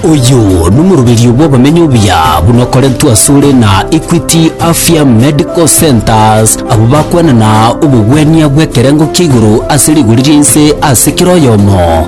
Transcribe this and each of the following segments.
Oyo nomoroberio bw'abamenyi obuya buna okorentwe asore na Equity Afya Medical Centres, abwo bakwenana obogwenia bw'ekerengo kia igoro ase rigori ria inse ase kera oyomo.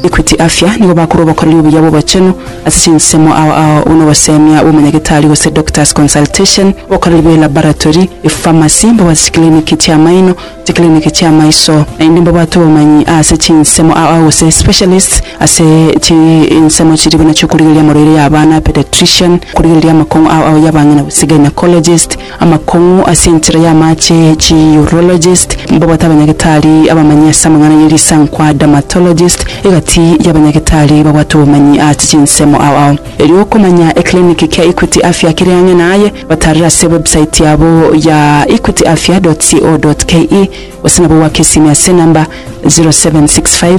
Equity Afya nigo bakorwa obokoreri obuya bw'obochenu ase chinsemo ao ao buna ogosemia bw'omonyagetari gose doctor's consultation, obokoreri bwe laboratory, epharmacy, mbabwate chikiliniki chi'amaino, chikiriniki chi'amaiso, naende mbabwate obomanyi ase chinsemo aa gose specialists ase chinsemo chiria buna chi'okorigereria amoroiro y'abana, pediatrician, korigereria amakong'u aa ao y'abang'ina gose gynaecologist, amakong'u ase enchera y'amache, chi urologist, mbabwate abanyagetari abamanyi ase amang'ana ye risankwa, dermatologist, egati y'abanyagetari babwate obomanyi ase chinsemo aa ao. Erio okomanya ekiriniki kia Equity Afya kere ang'e naye, Batarire ase website yabo ya equityafya.co.ke gose nabo goaka esimi ase enamba 0765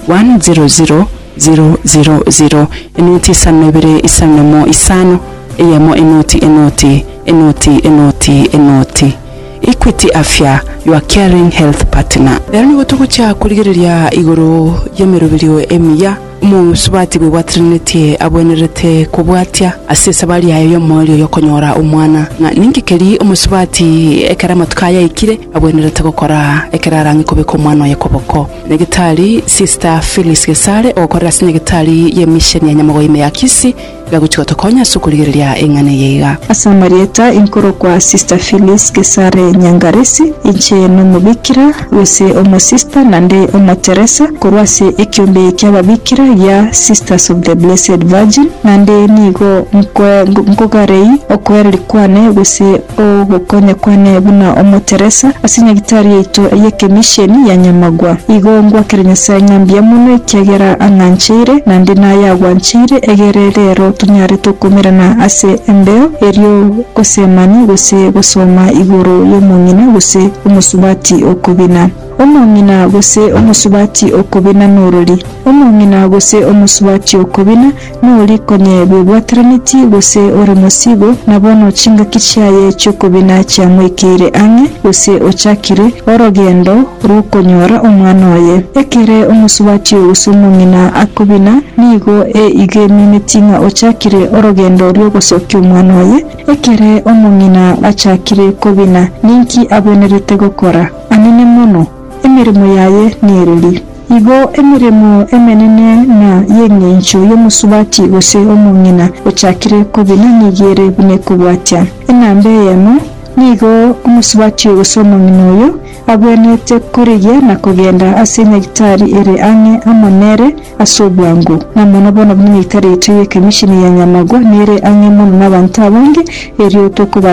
100 000. Enoti isano na ibere isano na emo isano eyemo enoti enoti enoti enoti enoti Equity Afya your caring health partner. Ero nigo togochia korigereria igoro y'emeroberio emiya. Omosubati bw'Ebwa Trinity abwenerete kobwatia ase esabari yaye y'omoerio y'okonyora omwana. Ng'a ninki keria omosubati, ekero amatuko aye aikire, abwenerete gokora ekero arang'e kobeka omwana oye koboko? Nyagetari Sister Phyllis Gesare, ogokorera ase Nyagetari y'emisheni ya Nyamogoime ya Kisii, Gagochi gotokonya ase okorigereria eng'ana eye iga. Ase amarieta, inkorokwa Sister Phyllis Gesare Nyangaresi, inche nomobikira, gose omosista na nde omoteresa korwa ase ekiombe ki'ababikira gia Sisters of the Blessed Virgin, naende nigo nkoe nkogarei okoereria kwane gose Ogokonyekwa ne buna omoteresa ase nyagitari yaito y'ekemisheni ya Nyamagwa. Igo ngwakere Nyasae ng'a mbuya mono ekiagera ang'ancheire naende naye agwancheire egere rero tonyare tokomerana ase embeo erio gose mani gose gosoma igoro y'omong'ina gose omosubati okobina. Omong'ina gose omosubati okobina norori? Omong'ina gose omosubati okobina Nori konyebia obwataranetie gose ore mosiibo, na bono chingaki chiaye chi'okobina chiamoikeire ang'e, gose ochakire orogendo rw'okonyora omwana oye. Ekere omosubati gose omong'ina akobina, nigo egemineti ng'a ochakire orogendo rw'ogosokia omwana oye. Ekere omong'ina achakire kobina, ninki abwenerete gokora? Amine mono. emeremo yaye nereri. Igo emeremo emenene na y'engencho y'omosubati gose omong'ina ochakire kobina nigo ere buna ekobwatia. Enamba eyemo, nigo omosubati oyo gose omong'ina oyo agwenerete korigia na kogenda ase enyagitari ere ang'e amo nere ase obwango. Na mono bono buna enyagitari yaito y'ekamisheni ya Nyamagwa nere ang'e mono n'abanto abange, erio tokobarera.